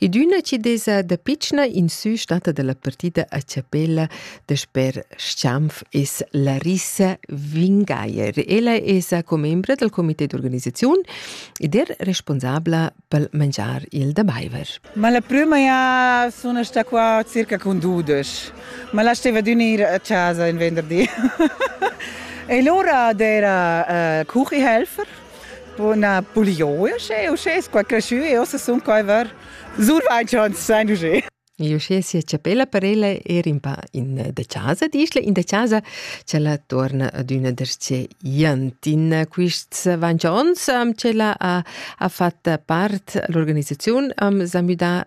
Ed üna chi desa da pitschna in sü stata da la partida a chapella dasper Stampf es Larissa Wingeier. Ella esa commembra dal comité d'organisaziun ed er responsabla pel mangiar il da baiver. Ma la prüma ja sun sta qua circa cun dudesch. Ma la steva d'unir a chasa in venderdi. e lura d'era uh, cuchihelfer Buna buglioia, sche uschè es qua creschü e ossa sun qua var survainch ans sain usché. E uschè sia chapella per ella era un pa in eh, da casa, dischla in da casa, ch'ella torna ad üna derce Iantin. Quists vanch ons, um, ch'ella ha, ha fat part l'organisaziun, um, s'ha müdà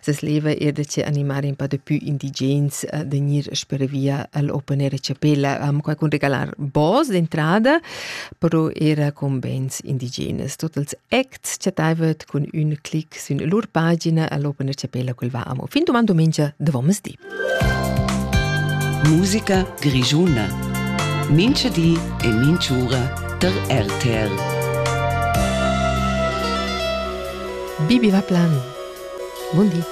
Ses leva era da che animar in pa da più indigens uh, da gnir sper via al open air chapella. Um, qua con regalar bos d'entrada, però era con bands indigenes. Totals acts chattaivat cun ün clic sün lur pagina all'open air chapella quel va amo. Fin domando mengia, da vomes di. Musica grischuna. Mincha di e minch'ura tar RTR. Bibi Vaplan. Buondì.